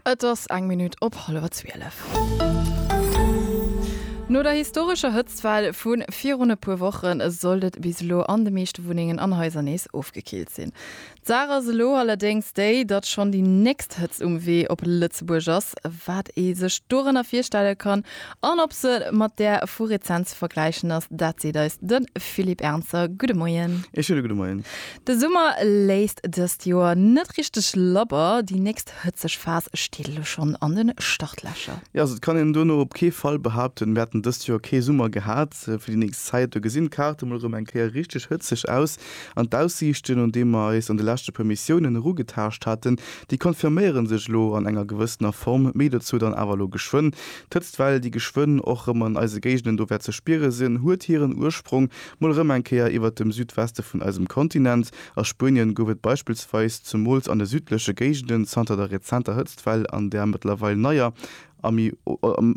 Et ass eng Minutt op hallwer zwielef. No der historescher Hëtztwell vu virun e puer Woche sollt et bis elo an de meeschte Wunnengen an Haiser nees ofgekillt sinn. D'Saach ass elo allerdéngs déi, datt schonn déi nächst Hëtzt um Wee op Lëtzebuerg ass. Wat ee sech dorënner virstelle kann an ob se mat där vu rezent ze vergläichen ass, dat seet eis de Philippe Ernzer. Gudde Moien. Ee schéine gudde Moien. De Summer léisst dëst Joer net richteg labber, déi nächst hëtzeg Phas steet elo schonn an de Startlächer. Jo, also et kann een dono op kee Fall behaupten, mir hätten dëst Joer kee Summer gehat. Fir déi nächst Zäit, do gesinn d'Kaarte mol erëm eng Kéier richteg hëtzeg aus. An d'Aussiichten, un déi mer eis an de leschte puer Missiounen erugetaascht haten, déi confirméiere sech elo an enger gewëssener Form. Méi dozou dann awer elo geschwënn. D'Hëtztwell, déi geschwënn och erëm an eise Géigenden do wäert ze spiere sinn, huet hiren Ursprong Mol erëm eng Kéier iwwert dem Südweste vun eisem Kontinent. A Spuenien gouf et beispillsweis zumools an de südleche Géigenden zanter der rezenter Hëtztwell an där mëttlerweil neier a méi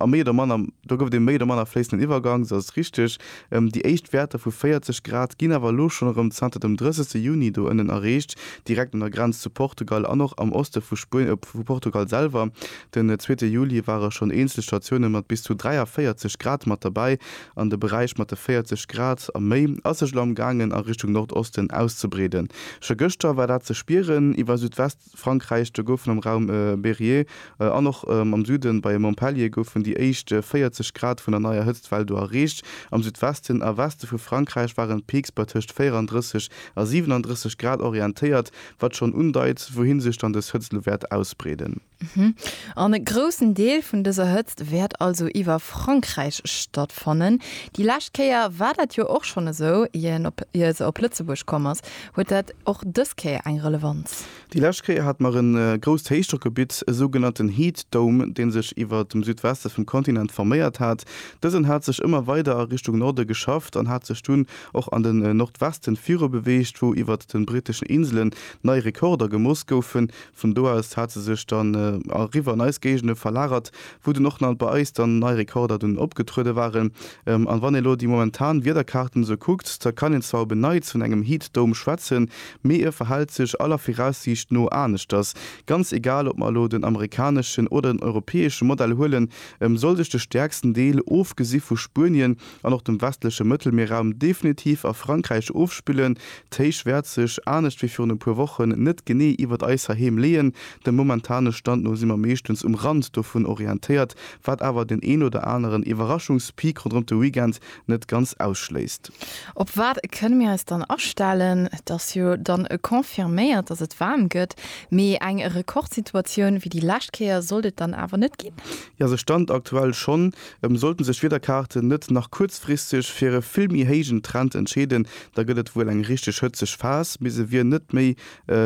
a méi oder manner, do gouf et ee méi oder manner fléissenden Iwwergank, sou ass et richteg, déi éischt Wäerter vu 40 Grad ginn awer elo schonn erëm zanter dem 30 Juni do ënnen erreecht, direkt un der Grenz zu Portugal an och am Oste vu vu Portugal selwer. Den zweete Juli ware schonn eenzel Statioune mat bis zu 43 Grad mat derbäi, an de Beräich mat de 40 Grad a méi ass sech elo am gaangen a Richtung Nordosten auszebreeden. Scho gëschter war dat ze spieren iwwer Südwestfrankräich, do goufen am Raum Berryer an och am Süden bei Montpellier goufen déi éischt 40 Grad vun der neier Hëtztwell do erreecht. Am Südwesten a Weste vu Frankräich waren d'Peaks bei tëscht 34 a 37 Grad orientéiert, wat schonn undeit, wouhin sech dann dës Hëtzt elo wäert ausbreeden. Mhm. An e groussen Deel vun dëser Hëtzt wäert also iwwer Frankräich stattfannen. Déi lescht Kéier war dat jo och schonn esou, ier se op Lëtzebuerg komm ass. Huet dat och dës Kéier eng Relevanz? Déi lescht Kéier hate mer e grousst Héichdrockgebitt, e sougenannten Heat Dome, dee sech iwwer dem Südweste vum Kontinent forméiert hat. Dësen hat sech ëmmer weider a Richtung Norde geschafft an hat sech dunn och an den Nordwesten virubeweegt, wou iwwer de britteschen Inselen nei Rekorder gemooss goufen, Vun do aus hat se sech dann eriwwer an eis Géigende verlagert, wou dunn och na bei eis dann nei Rekorder dunn opgetruede waren. An wann ee lo déi momentan Wiederkaarten esou kuckt, da kann een zwar op en Neits vun engem Heatdome schwätzen, mee e verhält sech aller Viraussiicht no aneschters. Ganz egal ob mer elo den amerikaneschen oder den europäesche Modell huelen, sollt sech de stäerksten Deel, ofgesi vu Spuenien, an och dem westleche Mëttelmierraum definitiv a Frankräich ofspillen. D'Héich wäert sech, anescht wéi virun e puer Wochen, net genee iwwert eis heiheem leeën. Dem momentane Stand no si mer meeschtens um Rand dovun orientéiert, wat awer den een oder aneren Iwwerraschungspeak ronderëm de Weekend net ganz ausschléisst. Op wat kënne mir eis dann astellen? Et ass jo dann confirméiert, dass et waarm gëtt, mee eng Rekordsituatioun wéi déi lescht Kéier sollt et dann awer net ginn. Jo, se stand aktuell schonn Em sollten sech d'Wiederkaarten net nach kuerzfristeg fir e vill méi héijen Trend entscheeden, da gëtt et wuel eng richteg hëtzeg Phas, mee se wier net méi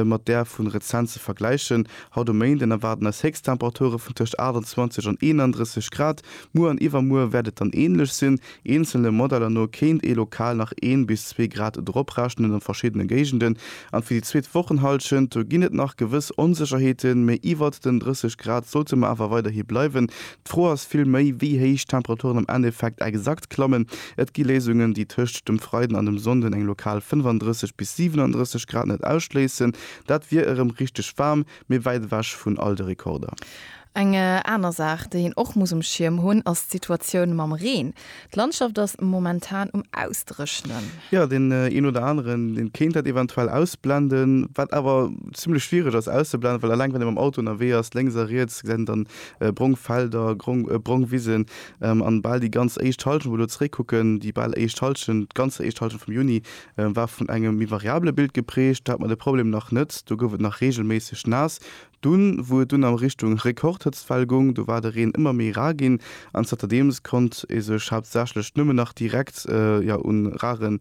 mat där vun rezent ze vergläichen. Haut um Méinden erwaarden eis Héchsttemperature vun tëscht 28 an 31 Grad, muer an iwwermuer wäert et dann änlech sinn. Eenzelne Modeller no kéint ee lokal nach een bis zwee Grad droprechnen a verschiddene Géigenden. An fir déi zweet Wochenhallschent, do ginn et nach gewëss Onsécherheeten, mee iwwert den 30 Grad sollte mer awer weiderhi bleiwen. D'Fro ass vill méi, wéi héich d'Temperaturen am Endeffekt exakt klammen. Et gi Léisungen, déi tëscht dem Freiden an dem Sonnden eng lokal 35 bis 37 Grad net ausschléissen. Dat wier erëm richteg waarm, mee wäit ewech vun all de Rekorder. Eng aner Saach, déi een och muss um Schierm hunn, ass d'Situatioun mam Reen. D'Landschaft ass momentan um Ausdréchnen. Jo, deen een oder aneren, dee kéint dat eventuell ausblenden, wat awer zimmlech schwiereg ass auszeblenden, well eleng wann ee mam Auto ënnerwee ass, lénks a riets gesäit een dann brong Felder, brong Wisen an bal déi ganz éischt Halschent, wou mer elo zeréckkucken, déi bal éischt Halschent, d'ganz éischt Halschent vum Juni war vun engem méi variabele Bild geprägt. Do hat mer de Problem nach net, do gouf et nach regelméisseg naass. Dunn, wou et dunn a Richtung Rekordhëtztwell gung, do war de Reen ëmmer méi rar ginn an zanterdeems konnt ee sech haaptsächlech nëmmen nach direkt jo un rare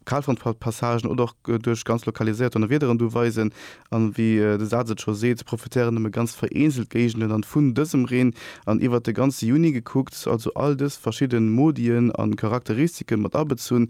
Kalfrontpassagen oder och duerch ganz lokaliséiert Donnerwiederen du weisen. An wéi de Saz et scho seet, profitéieren nëmme ganz vereenzelt Géigenden dann vun dësem Reen. An iwwert de ganze Juni gekuckt, also all dës verschidde Modien a Charakteristike mat abezunn,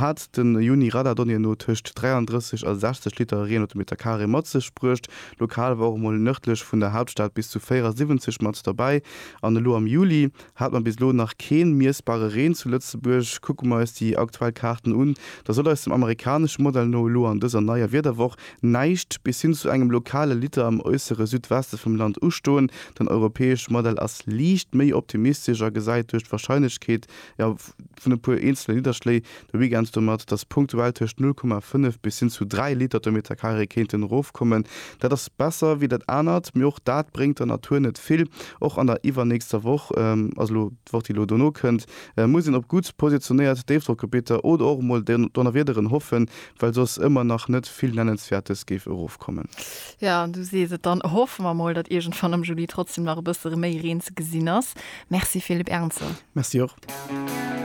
hat de Juni Radar Donnéeën no tëscht 33 a 60 Liter Reen op de Meter Carré mat sech bruecht. Lokal war och emol nërdlech vun der Haaptstad bis zu 74 mat derbäi. An elo am Juli Hat mer bis elo nach keen miessbare Reen zu Lëtzebuerg. Kucke mer eis déi aktuell Kaarten un, da soll eis dem amerikanesche Modell no elo an dëser neier Wiederwoch näischt bis hin zu engem lokale Liter am äussere Südweste vum Land ustoen. Den europäesche Modell ass liicht méi optimistesch a gesäit duerch d'Warscheinlechkeet, jo, vun e puer eenzele Nidderschléi de Weekend domat, dass punktuell tëscht 0,5 bis hin zu 3 Liter de Meterkaree kéinten erofkommen. Dat ass besser wéi dat anert, mee och dat bréngt der Natur net vill. Och an der iwwernächster Woch, also elo d'Woch déi elo dono kënnt, muss een op gutt positionéiert Déifdrockgebitter oder och emol Donnerwiederen hoffen, well soss ëmmer nach net vill Nennenswäertes géif erofkommen. Jo, du sees et. Dann hoffe mer mol, datt iergendwann am Juli trotzdem nach e bësse méi Reen ze gesinn ass. Merci Philippe Ernzer. Merci och.